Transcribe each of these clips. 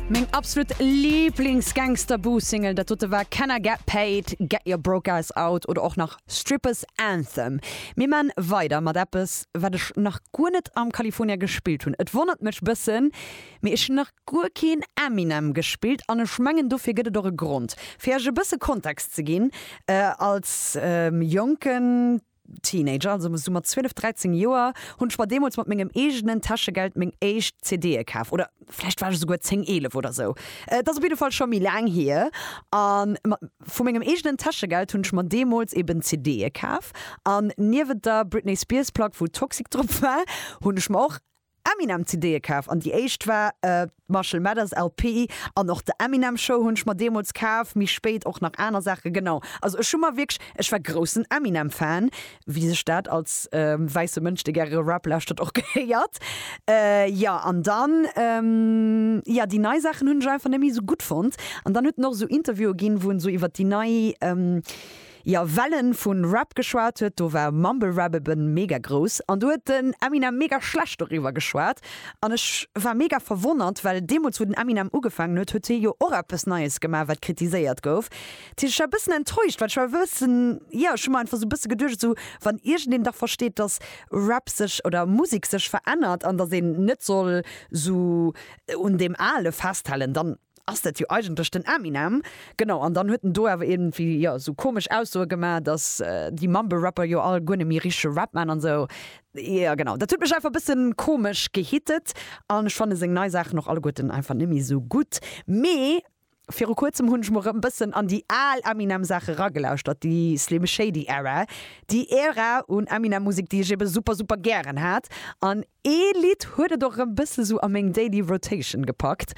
Meng absolut Lieblings Gangsterboo Single dat dote war Can I Get Paid, Get Your Broke Ass Out oder och nach Strippers Anthem. Mir man weider mat eppes wat ech nach guer net am California gespillt hunn. Et wonnert mech bëssen, mee ech hunn nach guer keen Eminem gespillt an ech mengen dofir gëtt et och e Grond. Fir iech e bësse Kontext ze ginn, als jonken. Teenager, also sou mat 12, 13 Joer, hunn ech mer deemools mat mengem eegenen Täschegeld meng éischt CDe kaf. Oder vläicht war ech esouguer 10, 11 oder sou. Et ass op jidde Fall scho méi laang hier. A mat vu mengem eegenen Täschegeld hunn ech mer deemools eben CDe kaf. An niewent der Britney Spears Plack, wou Toxic drop war, hunn ech mer och Eminem CD'e kaf an déi éischt war d'Marshall Mathers LP an och The Eminem Show hunn ech mer deemools kaf, méi spéit och nach aner Saache, genau. Also ech hu mer wierklech, ech war groussen Eminem Fan, wéi sech dat als wäisse Mënsch, dee gäre Rap lauschtert, och gehéiert. Jo an dann, jo déi nei Saachen hunn ech einfach net méi esou gutt fonnt an dann huet en och esou Interviewe ginn, wou en esou iwwer déi nei, Jo wellen vun Rap geschwaat huet do war Mumble Rap eben mega grouss an do huet den Eminem mega schlecht doriwwer geschwaat an ech war mega verwonnert well deemols wou den Eminem ugefangen huet huet hie jo och eppes neies gemaach wat kritiséiert gouf dat heescht ech war bëssen enttäuscht well ech war bëssen jo ech hu mer einfach sou bësse geduecht sou wann iergendeen dach versteet dass Rap sech oder Musek sech verännert an dass een net soll sou un deem ale festhalen dann Ass dat jo eigentlech den Eminem? Genau, an dann huet en do awer iergendwéi, jo, esou komesch Aussoe gemaach, dass déi Mumble-Rapper jo all guer net méi richtege Rap maachen an esou. Jo, genau, dat huet mech einfach e bësse komesch gehittet an ech fanne seng nei Saachen och alleguerten einfach net méi esou gutt. Mee viru Kuerzem hunn ech mol erëm e bëssen an déi al Eminem-Saache eragelauschtert, déi Slim Shady-Era, déi Ära un Eminem-Musek, déi ech eebe super, super gären hat an Ee Lidd huet et och erëm bësse sou a meng Daily Rotation gepackt.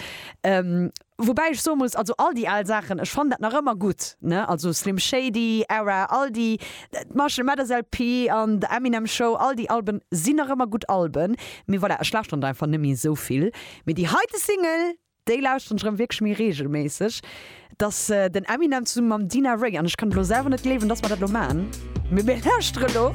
Woubäi ech soe muss, also all déi al Saachen, ech fannen dat nach ëmmer gutt, ne? Also Slim Shady, Era, all déi, d'Marshall Mathers LP an The Eminem Show, all déi Alben sinn nach ëmmer gutt Alben. Mee voilà, ech lauschteren der einfach net méi esou vill. Mee déi heite Single, déi lauschteren ech erëm wierklech méi reegelméisseg. Et ass den Eminem zesumme mam Dina Rae an ech kann et elo selwer net gleewen, dass mer dat elo man. Mee mir lauschtere lo.